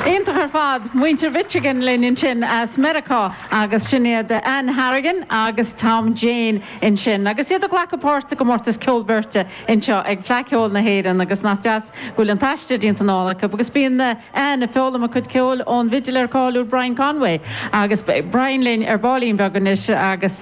Iontach ar fad. Muintir Mhichigan linn ansin as Meiriceá agus sin iad Ann Harrigan agus Tom Jane insin agus iad ag glacadh páirt i gcomórtas ceoil beirte anseo ag Fleadh Cheoil na hÉireann agus nach deas go bhfuil an t-aistear déanta anall acu agus bíonn Ann ag foghlaim a cuid ceoil ón bhfidléir cáiliúil Brian Conway agus beidh Brian linn ar baillín beag anois agus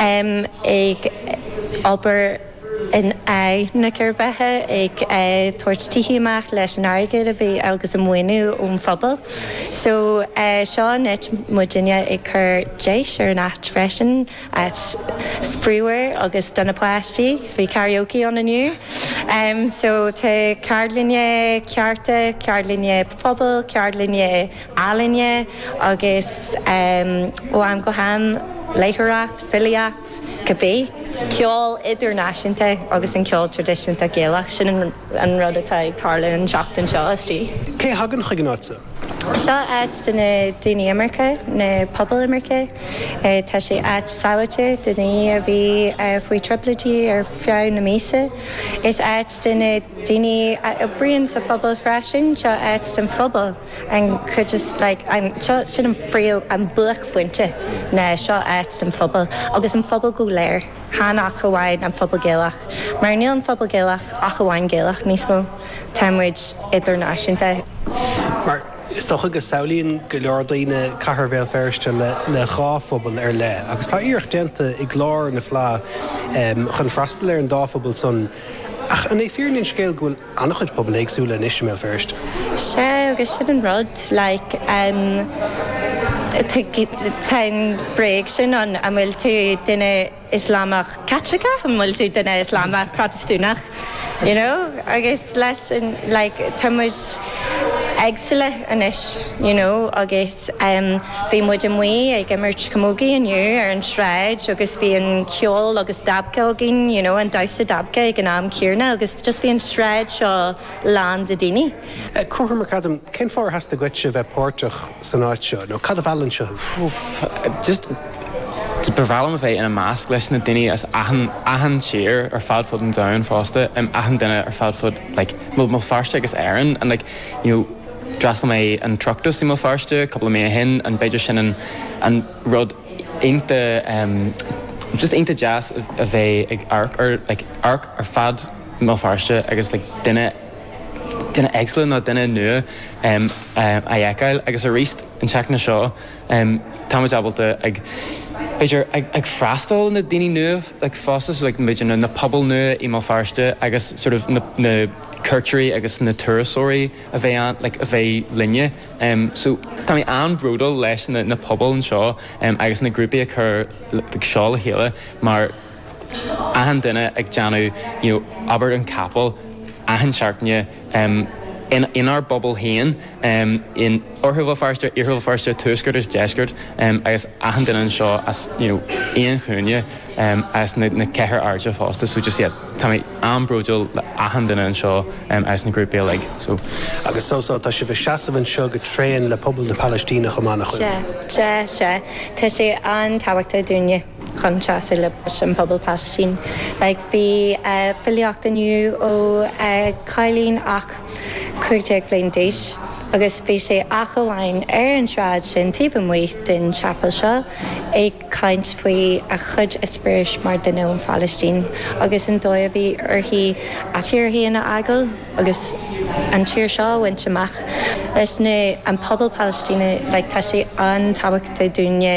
ag obair in aghaidh na gcirbheithe, ag tabhairt tithí amach leis an airgead a bhí agus an maoiniú ón phobal. So seo an áit, muidinne ag cur deis ar an áit freisin, áit spraoíúil agus do na páistí. Bhí karaoke ann inniu. So tá ceardlainne cearta, ceardlainne phobail, ceardlainne ealaíne agus ó am go ham léitheoireacht, filíocht, cibé. ceol idirnáisiúnta agus an ceol traidisiúnta Gaelach, sin an rud atá ag tarlú an tseachtain seo istigh. Cé a thagann chuig an áit? Seo áit do na daoine imirce, na pobail imirce. Tá sé áit sábháilte do na daoine a bhí faoi thrioblóidí ar feadh na míosa. Is áit do na daoine a oibríonn sa phobal freisin. Seo áit don phobal. an chuid is, like, sin an phríomh, an buaicphointe ná seo áit don phobal agus an phobal go léir, chan ach amháin an pobal Gaelach, mar níl an phobal Gaelach ach amháin Gaelach níos mó, tá muid idirnáisiúnta. Mar is dócha go samhlaíonn go leor daoine cathair Bhéal Feirste le dhá phobal ar leith agus tá iarracht déanta i gclár na Fleá chun freastal ar an dá phobal san ach an é fírinne an scéil go bhfuil an-chuid pobail éagsúla anois i mBéal Feirste. Sea, agus sin an rud, like, em, tá an bréag sin ann, an bhfuil tú duine Ioslamach Caitliceach, an bhfuil tú duine Ioslamach Protastúnach, you know, agus leis sin, like, tá muid éagsúla anois, you know, agus. Bhí muid amuigh ag imirt camógaí inniu ar an tsráid agus bhí an ceol agus dabke againn, you know, an damhsa dabke ag an am céanna agus just bhí an tsráid seo lán de dhaoine. Cóthar McAdam, Cén fáth ar theastaigh uaitse a bheith páirteach san áit seo nó cad a mheall anseo thú? Úf, just, ba bhreá liom a bheith ina measc leis na daoine as achan, achan tír ar fad fud an domhain fosta, em, achan duine ar fad fud, like, Bhéal Feirste agus Éirinn and like, you know, D'fhreastal mé an Oireachtas i mBéal Feirste cúpla mí ó shin and b'fhéidir sin an an rud iontach just iontach deas a bheith ag amharc ar like amharc ar fud Bhéal Feirste agus like duine duine éagsúla nó duine nua a fheiceáil agus aríst an tseachtain seo tá muid ábalta ag b'fhéidir ag freastal ar na daoine nua like fosta so like b'fhéidir na pobail nua i mBéal Feirste agus sort of na na cuairteoirí agus na turasóirí a bheith ann like a bheith linne em so tá mé an-bhródúil leis na na pobail anseo em agus na grúpaí a chur like seo le chéile mar achan duine ag déanamh you know obair an chapel achan seachtain em in inár bpobal féin em in Oirthear Bhéal Feirste, Iarthar Bhéal Feirste, Tuaisceart agus Deisceart em agus achan duine anseo as you know aon chúinne em as na na ceithre hairde fosta so just iad. Tá mé an-bhródúil le achan duine anseo as an ghrúpa uilig so. Agus so so, tá sibh ag seasamh anseo go tréan le pobal na Palaistíne chomh maith nach bhfuil? Sea, sea, sea. Tá sé an-tábhachtach dúinne chun seasamh leis an bpobal Palaistín. Like, bhí filíocht inniu ó chailín ach cúig déag bliain d'aois agus bhí sé ach amháin ar an tsráid sin taobh amuigh den chapel seo ag. caint faoi a cuid experience mar dhuine ón Phalaistín agus an dóigh a bhí uirthi a tír féin a fhágáil agus an tír seo a bhaint amach leis na, an pobal Palaistíneach, like, tá sé an-tábhachtach dúinne.